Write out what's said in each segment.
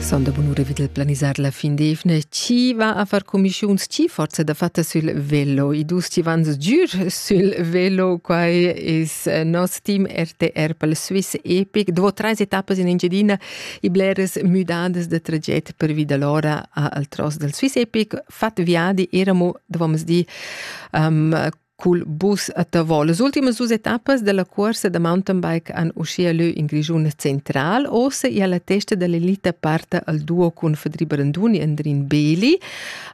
Sonda bunura vid il planisar la fin d'evna. Chi va a far cumischiuns? Chi forza da fatta sul velo? I dus chi van sgür sul velo. Quai es eh, nos team RTR pel Swiss Epic. Dopo trais etappas in Engiadina, i bleras müdadas da traget pervi da l'ora al tros del Swiss Epic. Fat viadi eramo, dovamos dir, um, Cul bus a Tavò. Las ultimas dus etappas della cuorsa da mountainbike han uschia lö in Grischun central. Ossa ia la testa dell'elita parta al duo cun Fedri Branduni e Andrin Beli,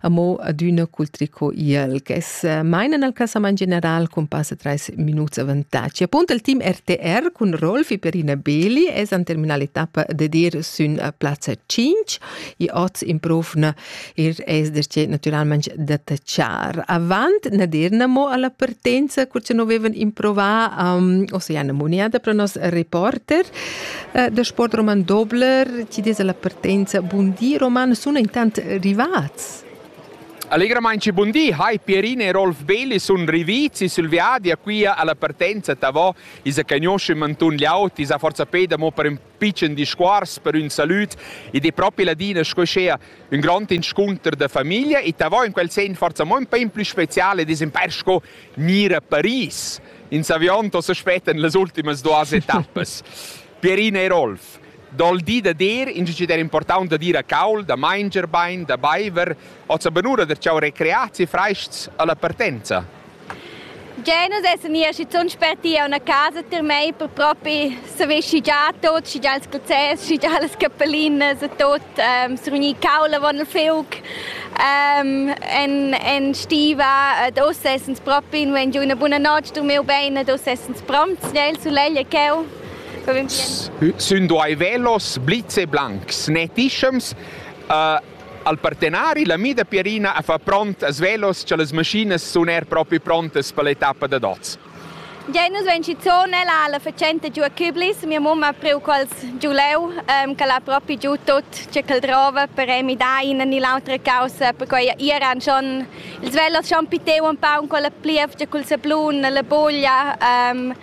amo adüna cul tricot IL, che mainan al casament general con passa 3 minuts avantatg. Appunto il team RTR cun Rolf e Perina Beli es an terminal etappa de dir sün a plazza 5 e oz in profna ir es darcheu natüralmaing detachar. Avant na dir namo alla partenza, cur cha no vevan improvà um, Oceana Muniada pro nos reporter uh, da Sport Roman Dobler, ci des alla partenza bun di Roman, sun intant rivats. Allegramente buondì, hai Pierina e Rolf Belli sono rivizi sul viaggio qui alla partenza Tavò, isa cagnosce mantun gli auti, isa forza peda mo per pitschen discuors per ün salüd ed è propi ladina sco schea ün grand inscunter da famiglia e ta vo in quel sen forza mo ün pa in plü speciale ed es imper sco gnir a Paris. In s'aviond os aspettan las ultimas duas etappas. Pierina e Rolf dal di da dir in cic der important da dir a caul, da manger bain, da baiver, hoz abanura der ciao recreazi freists alla partenza. Già nus essan nia schizunt sperti a una casa tier mei per propi saver schi già tot, schi già ils process, schi già las cappelinas e tot, ähm, survegnir caul avon il feuc, ähm, en, en stiva ed ussa essans propi nu en giu una buna notg durmir bein ed ussa essans promts, già il sulegl e cheu. Sün duai velos blitz e blancs, ne tischems, uh, Al partenari la mida Pierina ha fa pront a svelos cha las maschinas sun er propi prontas per l'etappa dad oz. Ja, nus vein schizuon ella la facenta giu a Küblis. Mia mamma ha priu quels giu leu, ähm, che l'ha propi giu tut ce ch'el drova per emi da ina ni l'autra caussa, perquei iran schon ils velos schon piteu un pau con la plievgia, col sablun, la buglia. Ähm,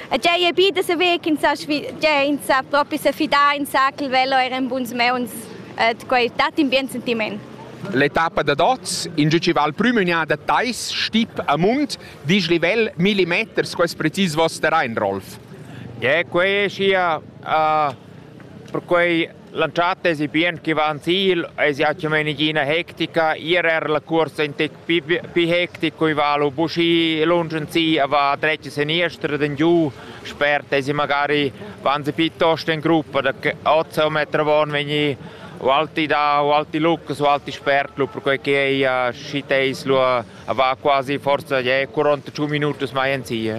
e già è bida se vec in sa, già in sa propi se fidar in sa che il velo era in buns meuns. ed quai dat in bien sentiment. L'etappa da dots, in giu val prümügnà da Tais, Stip a Mund, disch livel millimeters, quest precis vos terrain, Rolf. Yeah, quei è sia, uh, per cui lanciate si bien che va in Ziel, es ja cumenighina hectica, ir er la cursa in te pi hectic cui valu buschi lunsch in si a va dretg seniester den giu spert dass sie magari wenn sie piuttost in gruppa da 8 Meter von vegni o alti da o alti Lucas o alti Spertlu perché che ei a Schiteislu a va quasi forza je 45 minuti mai in si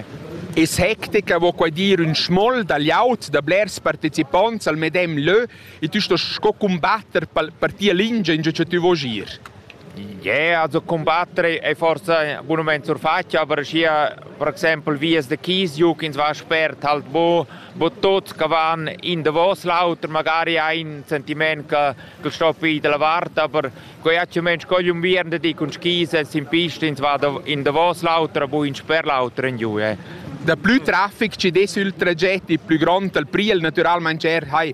Es hectica vo quai dir un schmoll da laut da blers participonts al medem lö e tu sto sco combatter per tia lingia in che tu vo gir. Yeah, also combatter è forse un moment surfatg, aber schier per exempel vias da Kiesjuk ins va spert halt bo, bo tuts che van in davos l'auter, magari ein sentiment che che stoppi dalla vart, aber quei hat schon Mensch cogli un vierende di con skis e sin pista ins va in davos l'auter, bu in sper l'auter in giù. Eh. Da plü traffic ci des il tragett, il plü grond al priel naturalmente er hai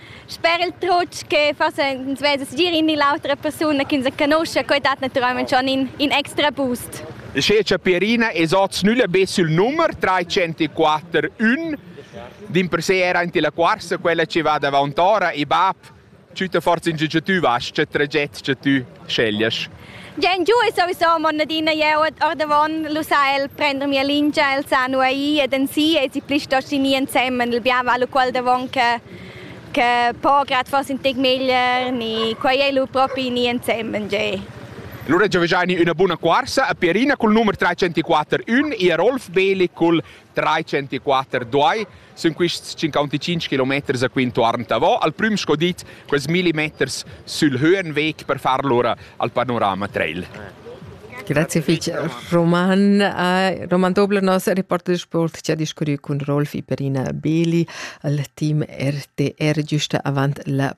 Sper il trutg che forse ins vesa segir in ni l'autra persuna che ins conosce, quei dat naturalmente schon in, in extra boost. Schece Pierina es oz nülla be sul nummer 304 1. Din per se era in la quarsa quella che va davant ora e bab, tschütta forza in giu tu vas, che traget che tu sceglias. Gen giu e sowieso mon adina jeu ordavon lu sa el prender mia lingia, el sa nu ai ed en si e si pli sto ni ensemen il biava lu quel davon che che po grad forse in tec meglier ni quei ei lu propi ni ensemen ge. Lura giovgiani üna buna cuorsa a Pierina cul numer 304 1 e a Rolf Beli cul 304 2. sun quists cinquanticinch kilometers a quintuorn davo, al prüm sco dit quels milli meters sül Höhenweg per far lura al panorama trail. Grazie fich. Roman, uh, Roman Dobler, nos reporter de sport, ci ha discurrü cun Rolf Iperina Beli al team RTR giusta avant la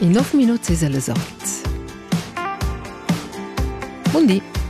In nov minut sesa les orts. Bundi.